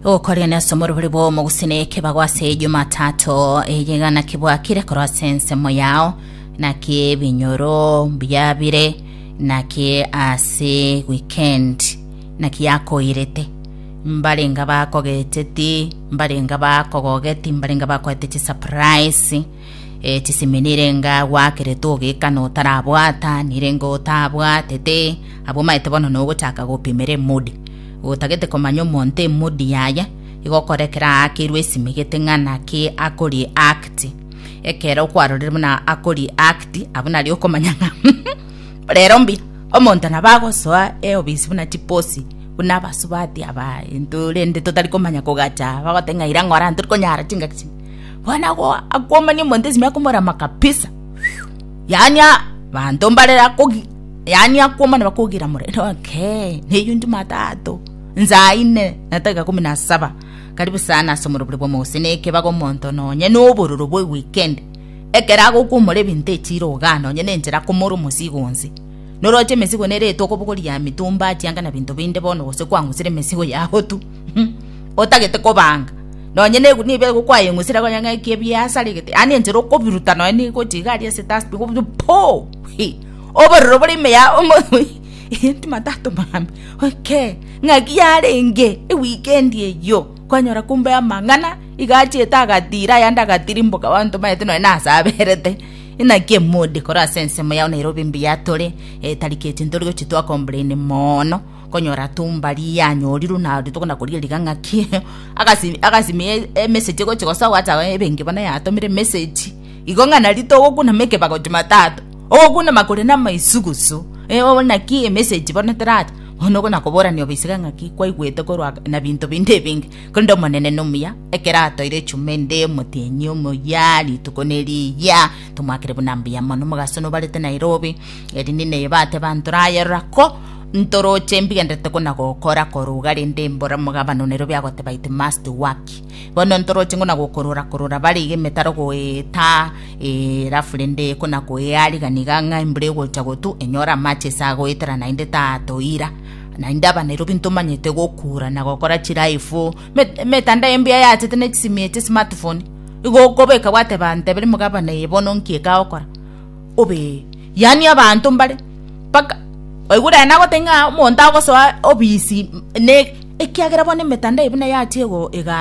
gokorera nase omorobori bw'omogusii na ekebago ase ejumatatu eye gana kibwakire korwa ase ensemo yao naki ebinyoro biabire naki ase weekend naki yakoirete mbarenga bakogeteti mbarenga bakogogeti mbarenga bakoete chisurprise Etisimi nirenga gwakerete ogekana otarabwata, nirenga otabwatete, abwamaete bono nogochaka gopimera emodi. Gotagete komanya omonto emodi yaye, igokora ekero aakirwe esimi gete ng'a naki akori act. Ekero kwarorire buna akori act, abwo nario okomanya ng'a rero mbi omonto nabo agosoa eobisi buna chiposi buna abasubati aba intwe rende totari komanya kogacha, bagote ng'a ira ng'ora ntorikonyara chingaki chinde. Bono agwo akwomania omonto esimi akomorama kabisa. Yaani abanto mbare akogi yaani akwomana bakogira more okay neyio Jumatatu nsaa ine na dakika kumi na saba karibu sana ase omorobore bwa omogose na ekebago omonto nonye na obororo bwa eweekend ekero agokwomora ebinto echiro igaa nonye na enchera akomora omosigo onsi noroche emesigo nere etokobogoria emitumba chianga na binto binde bono gose kwang'usire emesigo yago tu otagete kobanga nonye negunia ebiaye gokwayeng'usire konya ng'aki ebiasarigete yaani enchera okobiruta nonye nigochi iga aria ase dustbin okobiruta poo hii obororo bore ime ya timatato mambia okay ng'aki yarenge ewikendi eyio kwanyora kumbe amang'ana iga achiete agatira ayande agatirimboka abanto baete nonye nase aberete naki emood ekoro ase ensemo yao nairobi mbuya tore etariki echi nitorigochia twa complain moono. Konyora tumba rianyorirwe na rituko na koria riga ng'aki, agasi- agasimia e- emesegi egochi gose agoacha aye ebenge bono yatomire emesegi, igo ng'a nari togokunama ekebago Jumatatu, ogokunama koria na amaisugusu, eh oo naki emesegi bono teracha, bono ogo nakoborani obisige ng'aki kwaigwete korwa ag- na binto binde ebinge, korende Omonene nomuya, ekero atoire echuma ende, omotienyi omoyia, rituko neriyia, tomwakire buna mbuya mono, mogasonobarete Nairobi, erinde naye bateba ntore aye rora ko. Ntoroche mbigenderete kona-gokora korwa rende mbora omogabane one rubia agoteba ite must work. Bono ntoroche ngona gokorora korora bare iga emetaro goetaa ee alafu rende kona koea rigani iga ng'a embura egocha gotu enyore amache ase agoetera naende tatoira naende aba Nairobi ntomanyete gokura na gokora chiraifu met emetandao embuya yachete ne chisimi eche smart phone igo okobeka gwateba ntebiri omogabane eye bono nki ekagokora obe, yaani abanto mbare mpaka oigure aye nagoteba ng'a omonto agosoa obisi, ekiagera bono emetandao buna yachia egaa.